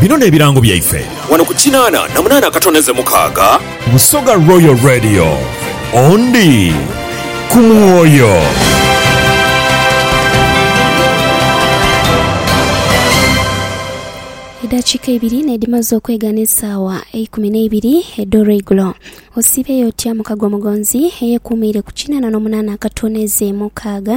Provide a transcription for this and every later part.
Bino n'ebirango byaife. Wano ku kinaana na munaana akatondeze mukaaga. Busoga Royal Radio, ondi ku mwoyo. Edhakiika ibiri n'edhimaze okwegana esaawa eikumi n'eibiri edh'olweigulo. Osiibeeyo otya mukago omugonzi eyekuumiire ku kinaana n'omunaana akatondeze mukaaga?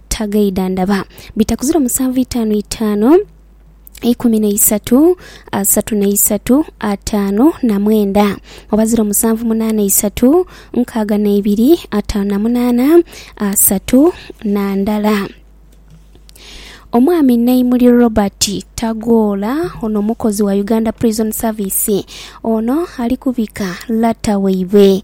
Tagaidhandaba. Bita ku ziro musanvu itaanu itaanu ikumi na isatu asatu na isatu ataanu na mwenda oba ziro musanvu munaana isatu nkaaga na ibiri ataanu na munaana asatu na ndala. Omwami Naimuli Robert Tagoola ono mukozi wa Uganda Prison Service. Ono ali kubika lata waibwe.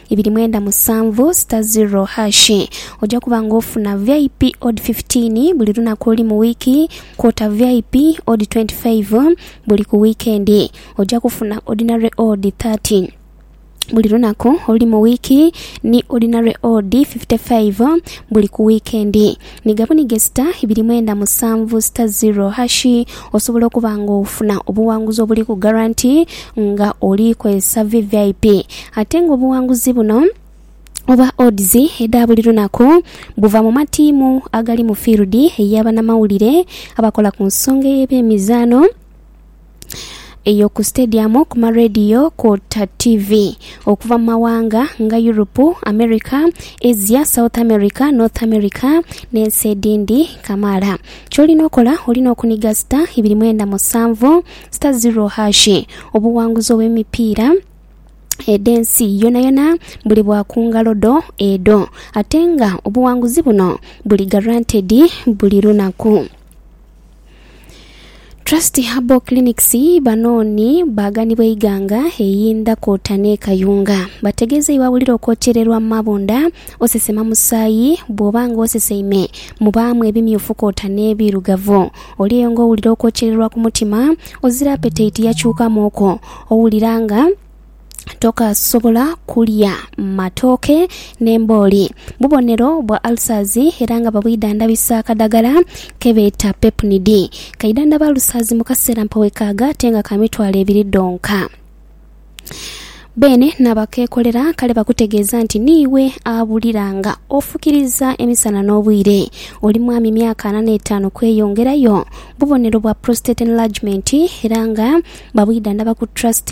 ibiri mwenda musanvu sita ziro hashi. Oja kuba nga ofuna VIP odi fifitiini buli lunaku olu mu wiiki, kwota VIP odi twenti faivu buli ku wiikendi. Oja kufuna odinare odi thati buli lunaku olu mu wiiki ni odinare odi fifite faivu buli ku wiikendi. Ni ghabuniga sita ibiri mwenda musanvu sita ziro hashi osobola okuba nga ofuna obuwanguzi obuli ku garanti nga oli kozesa vvip ate nga obuwanguzi buno oba odds edha buli lunaku buva mu matiimu agali mu fiirudi eya banamawulire abakola ku nsonga ey'ebyemizaano. eyo ku sitediyamu, ku marediyo kwota tivi okuva mu mawanga nga Yuropu, Amerika, Asia, South Amerika, North Amerika n'ensi edhindhi kamaala. Ky'olina okola olina okuniga sita ibiri mwenda musanvu sita ziro haashi obuwanguzi obw'emipiira edh'ensi yonayona buli bwa ku ngalo dho edho ate nga obuwanguzi buno buli garantedi buli lunaku. Trust Herbal Clinics bano ni baaganibwa Iganga eyinda kwota n'e Kayunga. Bategeezeibwa wulira okwokyererwa mu mabunda, osesema musaayi, bw'oba nga oseseime mubaamu ebimyufu kwota n'ebirugavu. Oli eyo nga owulira okwokyererwa ku mutima, ozira apeteiti yakyukamuuku, owulira nga tokasobola kulya matooke n'embooli. Bubonero bwa alsazi era nga babwidhandabisa akadagala ke beeta Pepnid. Kaidhandhaba alsazi mu kaseera mpa wekaaga ate nga ka mitwalo ebiri dhonka. Beene n'abakeekolera kale bakutegeeza nti niiwe awulira nga ofukiriza emisana n'obwire. Oli mwami myaka ana n'etaanu kweyongerayo. Bubonero bwa prostate enlargement era nga babwidhandhaba ku trust.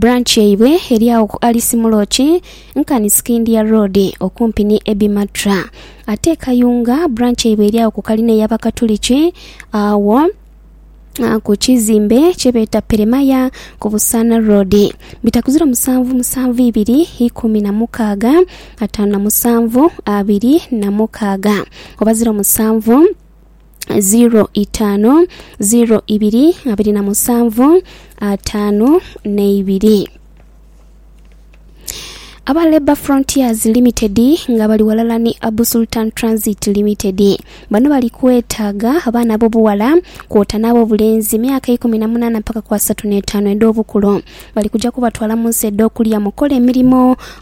branch yaibwe eri agho ku Alice Muloki nkani Sikindia Road okumpi ni Ebi Matra. Ate e Kayunga branch yaibwe eri agho ku kalina ey'Abakatuliki agho ku kizimbe kye beeta Peremaya ku Busaana Road. Bitakuziro musanvu musanvu ibiri ikumi na mukaaga ataanu na musanvu abiri na mukaaga oba ziro musanvu. zeero itaanu zeero ibiri abiri na musanvu ataanu n'eibiri. Aba Labour Frontiers Limited nga bali ghalala ni Abu Sultan Transit Limited. Bano bali kwetaaga abaana ab'obuwala kwota n'ab'obulenzi myaka ikumi na munaana mpaka ku asatu n'etaanu edh'obukulu. Bali kuja kubatwala mu nsi edh'okulya mukole emirimo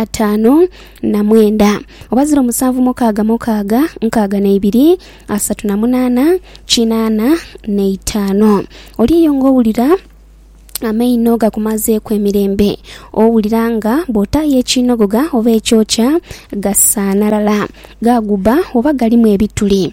ataanu na mwenda oba ziro musanvu mukaaga mukaaga nkaaga na ibiri asatu na munaana kinaana na itaano oliiyo nga owulira amaino gakumazeeku emirembe owulira nga bw'otaayo ekiinogoga oba ekyokya gasaanalala, gaaguba oba galimu ebituli.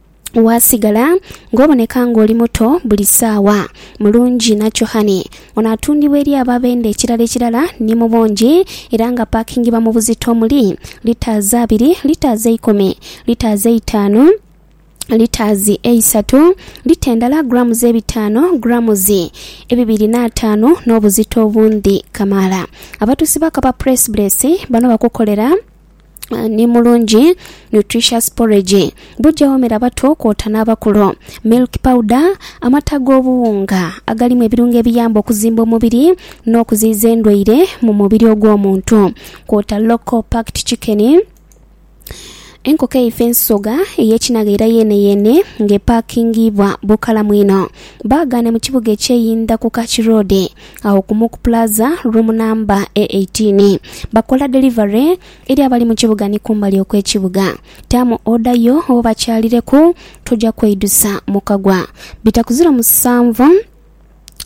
waasigala ng'oboneka ng'oli muto buli saawa. Mulungi nakyo hhani. Ono atundibwa eri abo abenda ekirala ekirala ni mu bungi era nga paakingibwa mu buzito omuli, litres abiri, litres eikumi, litres eitaanu, litres eisatu, lita endala, grams ebitaano, grams ebibiri n'ataanu n'obuzito obundhi kamaala. Abatuusi ba Kapa Press Bless bano bakukolera. ni mulungi nutritious porridge. Buja womera abato kwota n'abakulu. Milk powder, amata g'obuwunga agalimu ebirungo ebiyamba okuzimba omubiri n'okuziyiza endwaire mu mubiri ogw'omuntu kwota local packed chicken, enkoko eife ensoga ey'ekinagha era yeeneyeene ng'epakingiibwa bukalamu inho. Baaghaane mu kibuga eky'e Indhaku Kaki Road. agho ku Muku Plaza, room namba e eighteen. Bakola delivery eri abali mu kibuga ni kumbali okw'ekibuga. Taamu oda yo oba obakyalireku, toja kweidusa mukagwa. Bita ku ziro musanvu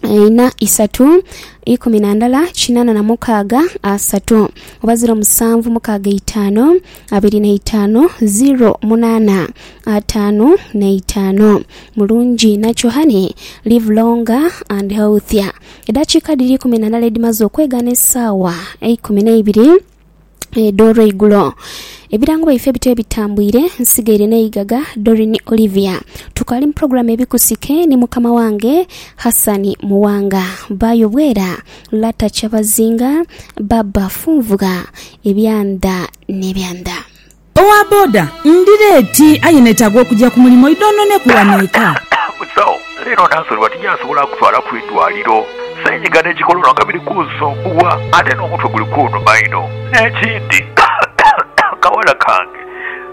ina isatu ikumi na ndala kinana na mukaaga asatu oba ziro musanvu mukaaga eitaanu. abiri na itaanu ziro munaana ataanu na itaanu. Mulungi nakyo honey, live longer and healthier. Edhakiika dhiri ikumi na ndala edhimaze okwegana esaawa eikumi n'eibiri edh'olweigulo. Ebirango byaife bityo ebitambwire, nsigaire n'eigaga Doreen Olivia. Tukaali mu pulogulaamu Ebikusike ni mukama wange Hassan Muwanga. Baayo bwera. Lata Kyabazinga, Baba Funvugha, ebya ndha n'ebya ndha. Owa boda, Ndi leeti aye neetaaga okugya ku mulimu idhonhoneku wano eka. Musawo, Leero nasulibwa tinyasobola kutwala ku idwaliro. Seenyiga n'ekikolonho nga biri kunsumbuwa ate n'omutwe guli kunhuma inho. N'ekindi, kawala kange.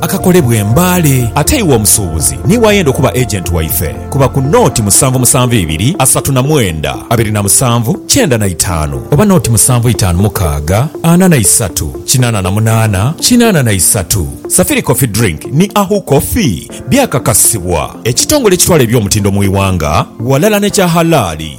akakolebwa e Mbale. Ate iwe omusuubuzi niiwe ayenda okuba agent waife, kuba ku nooti musanvu musanvu ibiri asatu na mwenda abiri na musanvu kyenda na itaanu oba nooti musanvu itaanu mukaaga ana na isatu kinaana na munaana kinaana na isatu. Safiri Coffee Drink ni Ahu Coffee byakakasibwa ekitongole ekitwala eby'omutindo mu iwanga walala n'ekya halaali.